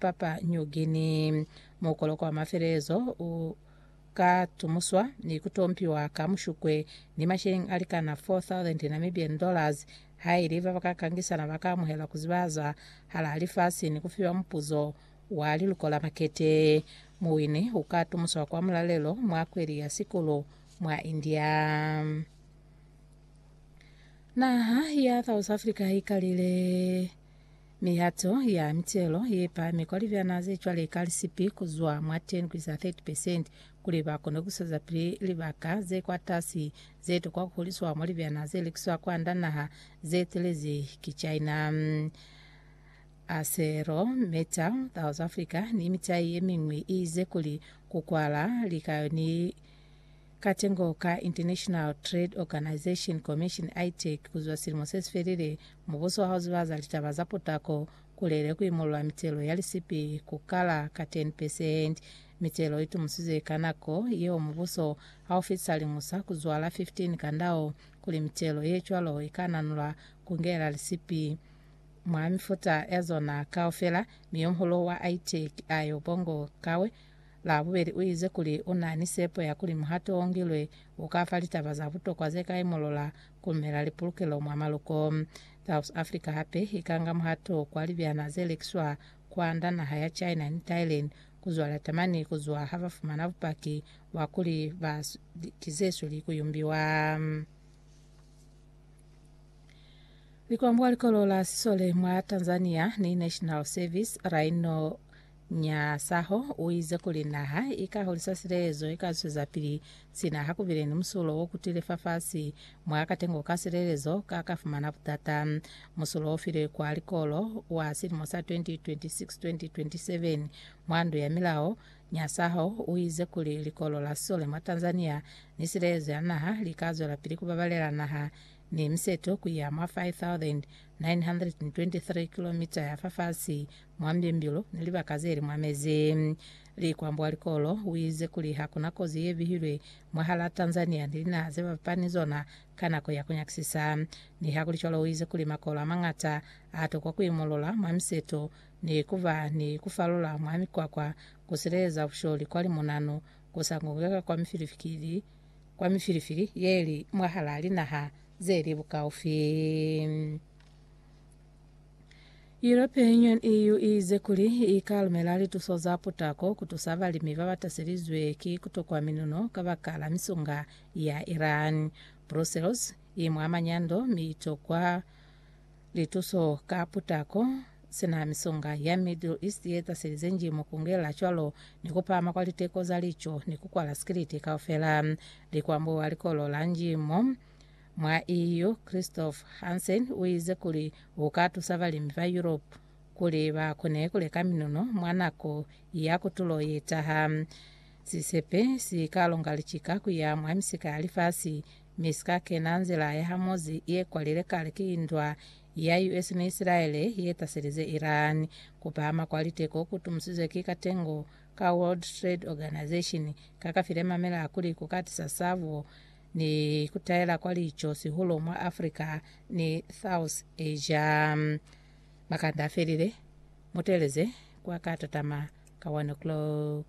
Papua New Guinea. Mukoloko wa mafelelezo u ka tumuswa ni ku tompiwa ka Mushukwe ni masheleng a likana 4,000 Namibian dollars haili ba ba ka kangisana ba ka amuhelwa ku zibahaza hala lifasi ni ku fiwa mupuzo wa liluko la makete. Muwini u ka tumuswa kwa mulalelo mwa kweli ya Sikulu mwa India. Naha ya South Africa i kalile. Mihato ya mitelo ye pahami kwa libyana ze cwale ka lisipi ku zwa mwa 10 ku isa 30 percent kuli ba kone ku swezapili libaka ze kwatasi ze tokwa ku huliswa mwa libyana ze lekiswa kwand'a naha ze telezi ki China, Acero Metal, South Africa ni mitai ye miñwi, i ize kuli ku kwala lika ni Katengo ka International Trade Organization Commission, ITEC, kuzwa silimo sesifelile, mubuso wa hauziba za litaba za potako kulele kuimulula mitelo ya lisipi kukala ka 10 percent. Mitelo itumusizwe ka nako yeo mubuso haufitisa liñusa kuzwa la 15 ka ndau kuli mitelo yecwalo ikananulwa kungela lisipi mwa mifuta yazona kaufela, mi yomuhulu wa ITEC, Ayo Bongo Kawe, Labubeli uize kuli unani sepo ya kuli muhato ongilwe ukafa litaba za butokwa zeka imolola kumela lipulukelo mwa maluko. South Africa hape ikanga muhato kwa libyana zelekiswa kwanda naha ya China ni Thailand kuzwala tamani kuzwa habafumana bupaki bwa kuli ba ki zesweli kuyumbiwa. Likwambo likolo la sisole mwa Tanzania ni National Service laino Nyasaho u ize kuli naha i ka hulisa silelezo, i ka zwezapili sina ha ku bile ni musulo wo kutile fafasi mwa katengo ka silelezo ka ka fumana butata. Musulo o filwe kwa likolo wa silimo sa 2026-2027 mwa ndu ya milao. Nyasaho u ize kuli likolo la sole mwa Tanzania ni silelezo ya naha li ka zwelapili ku babalela naha ni miseto ku ya mwa 5,923 kilomita ya fafasi Mwa mbimbilu ni libaka zeli mwa mezi, Likwambo wa likolo uize kuli hakuna kozi yebihilwe mwahalaa Tanzania ni linaha zebapapa ni zona ka nako ya kunyakisisa. Nihakulicwalo uize kuli makolo amañata atokwa kuimulula mwa miseto ni kuba ni kufalula mwa mikwakwa kusileleza busholi kwa limunanu kusangukeka kwa mifilifili kwa mifilifili yeli mwahalaa linaha zeli bukaufi. European Union, EU, i ize kuli i ka lumela lituso za putako ku tusa balimi ba ba taselizwe ki ku tokwa minuno kabakala misunga ya Iran. Brussels i mwa manyando mi i tokwa lituso ka putako, sina misunga ya Middle East ye taselize njimo ku ngela cwalo ni ku pahama kwa liteko za lico ni ku kwala sikiliti kaufela. Likwambuwa likolo la njimo. Mwa EU, Christoph Hansen uize kuli uka tusa balimi ba Europe kuli ba kone kuleka minono mwa nako ya kutulo yetaha. Sisepe si ka longa licika kuya mwa misika ya lifasi, mi sika kena nzila ya Hamozi ye kwalile kale ki ndwa ya US ni Isilaele ye taselize Iran. Kupahama kwa liteko ku tumusizwe ki katengo ka World Trade Organization ka ka file mamela kuli kuka tisa sabo ni kutaela kwa lico sihulo mwa Africa ni South Asia. Makanda afelile, muteleze kwa katatama ka 1 o'clock.